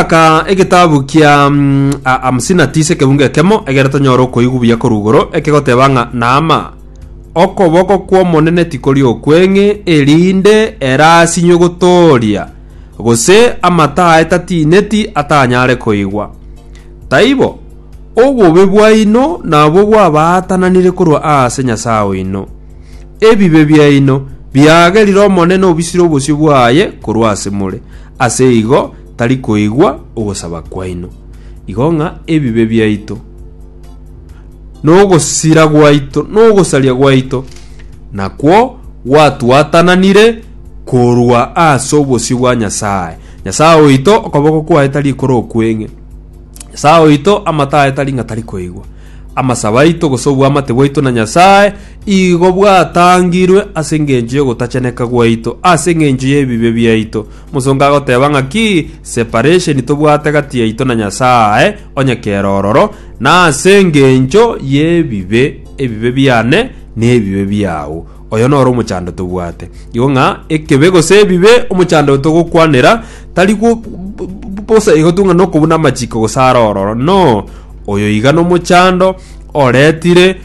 Gochaka egetabu kia a- hamsini na tisa ekebunga ekemo egere tonyore okoigwa buya korwa igoro, ekegoteba ng'a Naama, okoboko kw'Omonene tikori okweng'e, erinde erasinywe gotooria, gose amato aye tatineti atanyare koigwa. Taibo, obobe bwaino nabwo bwabaatananire korwa aase Nyasae oino. Ebibe biaino biagerire Omonene obisire obosio bwaye korwa ase more, ase igo tari koigwa ogosaba kwaino, igo ng'a ebibe biaito, na ogosira gwaito, na ogosaria gwaito nakwo gwatwatananire korwa ase obosio bwa Nyasae. Nyasae oito, okoboko kwaye tari ekoro okweng'e. Nyasae oito, amato aye tari ng'a tari koigwa. Amasabo aito, gose obwamate bwaito na Nyasae, igo bwatangirwe ase engencho y'ogotacheneka gwaito, ase engencho y'ebibe biaito, Mosongo agoteba ng'aki separesheni tobwate gati yaito na Nyasae, onye kera ororo, na ase engencho y'ebibe, ebibe biane nebibe biao. Oyo noro omochando tobwate. Igo ng'a ekebe gose ebibe omochando togokwanera tari gwo bosa igo tu ng'a nokobuna amachiko gose are ororo. No, oyo iga nomochando oretire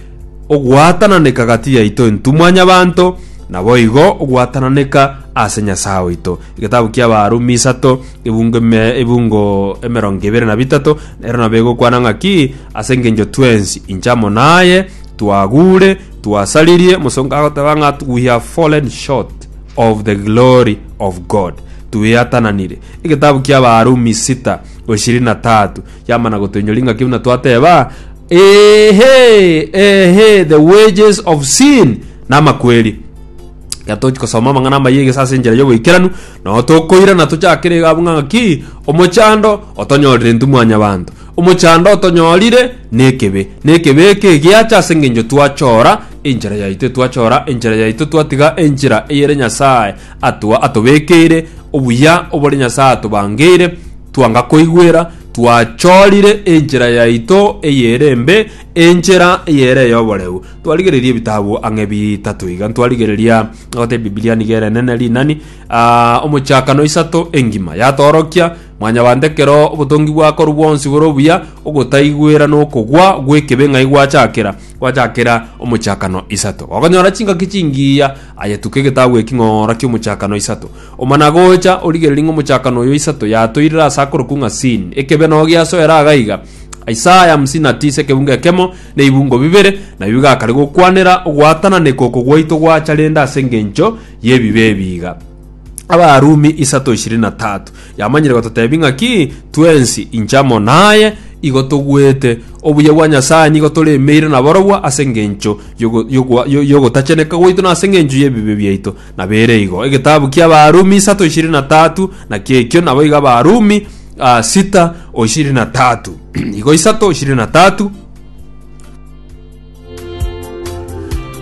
ogwatananeka gati yaito entumwa nyabanto, naboigo ogwatananeka ase Nyasae oito. Egetabu ki'Abarumi isato, ebungo eme- ebungo emerongo ebere na bitato, ero nabo egokwana ng'aki, Ase engencho twensi, inche amo naye, twagure, twasaririe, mosongo agoteba ng'a we have fallen short of the glory of God. Tweatananire. Egetabu ki'Abarumi sita, ishirini na tatu, yamana gotoinyoria ng'aki buna twateba, Eehee, eehee, the wages of sin namakweri Iga tochi kosoma amang'ana amaya egese ase enchera y'oboikeranu nao tokoirana tochakere iga abwo ng'aki omochando otonyorire intwe mwanyabanto omochando otonyorire nekebe nekebe eke giacha ase eng'encho twachora enchera yaito twachora enchera yaito twatiga enchera eyere nyasaye atwa atobekeire obuya obore nyasaye atobangeire twanga koigwera Twachorire enchera yaito eyere embe, enchera eyere ey'oboreu. Twarigereria ebitabu ang'e bitato iga. Ntwarigereria gote Biblia nigo ere enene rinani, ah, omochakano isato engima. Yatoorokia, Mwanyabanto ekero obotongi bwakorwa bwonsi bore obuya, ogotaigwera na okogwa gw'ekebe ng'ai gwachakera? Gwachakera omochakano isato. Gokonyora chingaki chingiya, aye tuka egetabu eki ng'ora kiomochakano isato. Omana gocha, origererie ng'a omochakano oyo isato yatoirire ase akorokwu ng'a Sin, ekebe nao giasoera aga iga, Isaya hamsini na tisa ekeunga ekemo na ebibungo bibere, nabio bigakare gokwanera ogwatananeka oko gwaito gwacha rende ase engencho y'ebibe ebi iga. Abarumi isato ishirini na tatu yamanyire gototebi ng'aki twensi inche amo naye igo togwete obuya bwa Nyasaye nigo toremeire nabarobwo ase engencho yogo- yogwa- yo- yogotacheneka gwaito na ase engencho y'ebibe biaito Nabeire igo, egetabu ki'Abarumi isato ishirini na tatu, naki ekio naboigo Abarumi a sita oshirini na tatu. igo isato oshirini na tatu.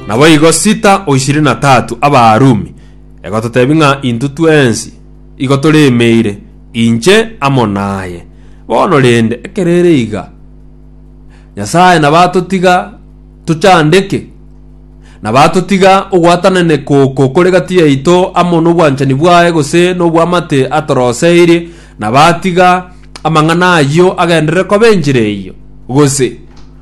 Naboigo sita oshirini na tatu Abarumi. Egototebi ng'a intwe twensi igo toremeire, inche amo naye. Bono rende, ekerere iga, Nyasae nabatotiga tochandeke? na batotiga ogwatananeka oko kore gati yaito amo n'obwanchani bwaye gose n'obw'amate atoroseirie, na batiga amang'ana ayio agenderere koba enchera eyio, gose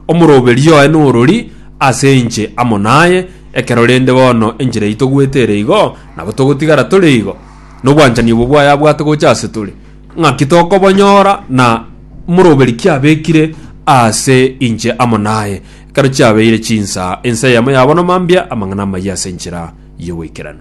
omoroberio oye norori ase inche amo naye, ekero rende bono enchera yaito goeta ere igo, nabo togotigara tore igo, n'obwanchani obo bwaye abwate gocha ase tore. Ng'aki tokobonyora na moroberi kiabekire ase inche amo naye? Ekero chiabeire chinsa, ense eyemo yabonwa mambia amang'ana amayia ase enchera y'ogoikeranu.